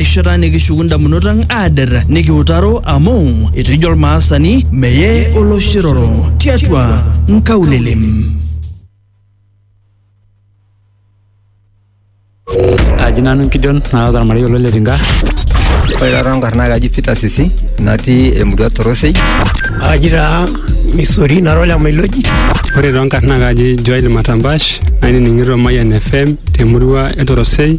erishata nikishuku ndamunot ang aader nikiutaro amu etejo olmaasani meye oloshiroro tiatua nkaulele. Aji nanu Gideon naata ormarei olo le Tinga. Ore taata enkarna kaji Peter Sisi natii emurua Torosei. Aji taa Misori nara ole Mailoji. Ore too nkarna kaji Joel Matambash nainining'ito Mayian FM temurua e Torosei.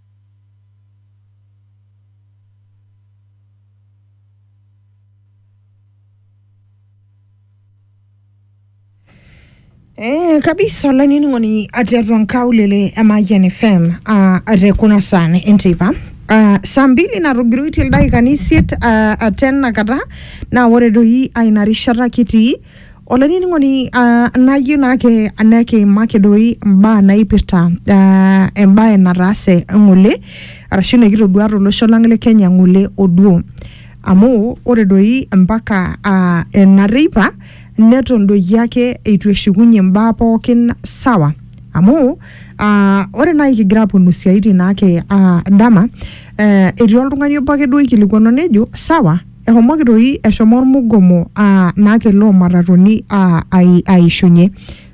Eh, kabisa olanining'oni ati atua nkaulele emayian fm uh, ate kuna saan enteipa uh, saa mbili natogiroitie ildaikani isiet uh, aten nakata naa ore doi aina rishata kitii olainining'oni uh, nayieu naake nekiimaki doi imbaa naipirta uh, embae nataase ng'ole arashu nikitodua tolosho lang le kenya ng'ole oduo amu ore doi mpaka uh, ena teipa neton doi ake eitu eshukunye imbaa pookin sawa amu uh, ore naaji kigira aponu siaitin naake uh, dama uh, etii oltung'ani obo ake duo oikilikuanu nejo sawa Ehomoki toi eshomo ormugomo aa naake loo matatoni aa ai- aishunye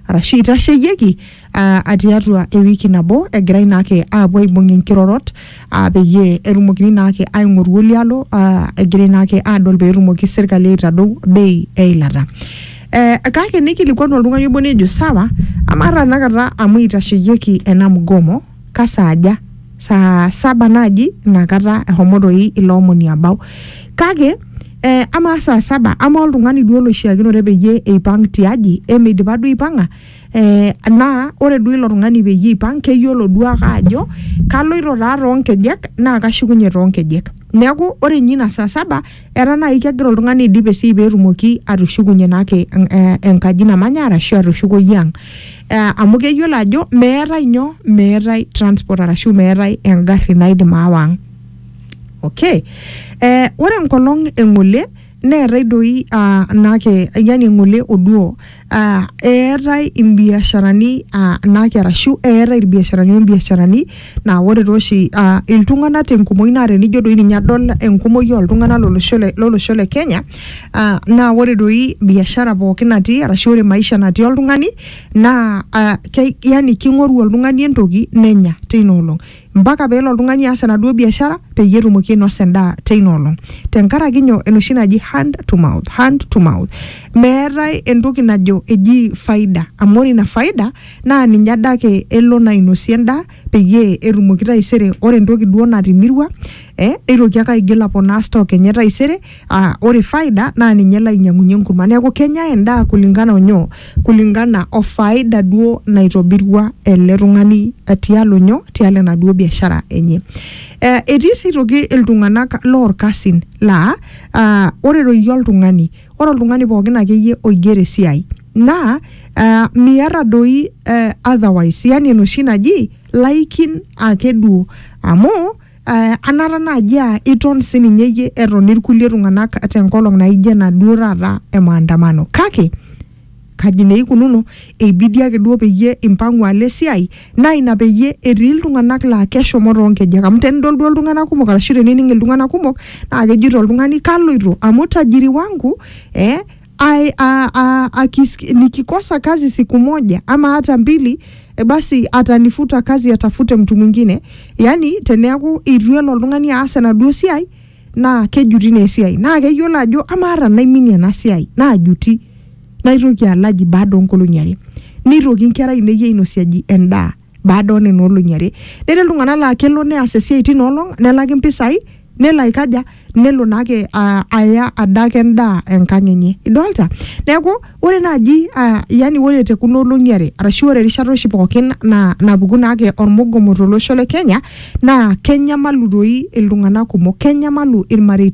arashu eitasheyieki aa a tiatua ewiki nabo egirai naake aapuo aibung' inkirorot aa peyie etumokini naake aing'oru oli alo aa egirai naake aadol peetumoki serkali aitadou bei e ilata. Ee kake nikilikuanu oltung'ani obo nejo sawa, amaa tenakata amu eitasheyieki ena mgomo. kasaaja saa saba naaji inakata ehomo toi ilo omoni abau kake eh, amaa saa saba amaa oltung'ani duo loishiakinore peyie eipang tiaji emeidipa duo aipang'a eh, naa ore duo ilo tung'ani peyie eipang keyiolo duo ake ajo kaloito taa toonkejek naa kashukunye toonkejek neeku ore inye ina saa saba etaa naaji kegira oltung'ani aidip esiai petumoki atushukunye naake en- eh, enkaji namanya arashu atushukoyie ang eh, amu keyiolo ajo meetae nyoo meetae transport arashu meetae engarri naidim aawa ang okay eh, ore enkolong eng'ole neetae doi uh, naake yani eng'ole oduo Uh, eetae imbiasharani uh, naake arashu eetae irbiasharani ombiasharani naa ore tooshi uh, iltung'anak tenkumoi naa tenijo doi ninye adol enkumoi oltung'anak lolosho le- lolosho le kenya uh, naa ore doi biashara pookin natii arashu ore maisha natii oltung'ani naa uh, ke, yani king'oru oltung'ani entoki nenya teina olong mpaka pee elo oltung'ani aas enaduo biashara peyie etumoki ainosa endaa teina olong tenkaraki nyoo enoshi naji hand to mouth, hand to mouth. Meetae entoki najo eji faida amu ore ina faida naa ninye adake elo naa ainosie endaa peyie etumoki taisere ore entoki duo natimirua eh, neitoki ake aigil aponaa stock enye taisere. Aa ore faida naa ninye lainyiang'unyie enkurma neeku kenyae endaa kulingana onyoo kulingana o faida duo naitobirua ele tung'ani eh, tialo nyoo tialo enaduo biashara enye eh, etii sii aitoki iltung'anak lorkasin laa ah, ore doi iyie oltung'ani ore oltung'ani pookin akeyie oigero esiai naa ah, miata doi eh, otherwise yani enoshi naji laikin ake duo amu eh, anata naaji aa iton sininye iyie eton irkulie tung'anak tenkolong naijo ena duo taata e maandamano kake kaji naa eikununo eibidi ake duo peyie impang'u alo esiai naa ina peyie etii iltung'anak laa keshomo toonkejek amu tenidol duo iltung'anak kumok arashu tenining iltung'anak kumok naa kejito oltung'ani kaloito amu tajiri wangu eh, ai- a- a- akisiki- nikikosa kazi siku moja ama hata mbili e, basi atanifuta kazi atafute mtu mwingine yani teneaku itu elo oltung'ani aas enaduo siai naa kejuti naa esiai naa keyiolo ajo amaa ata naiminie ena siai naajuti naitoki alaji baada onkolong'i are neitoki inkera ainei ainosiaji endaa baada oo nena olong'i are netii iltung'anak laa kelo neas esiai tina olong nelaki mpisai nelo aikaja nelo naake ah, aya adake endaa enkang enye idolta neeku ore naaji ah, yani ore te kuna olong'i are arashu ore erishata oshi pookin na, napuku naake ormugomo tolosho le kenya naa kenyamalu doi iltung'anak kumok kenyamalu ilmareita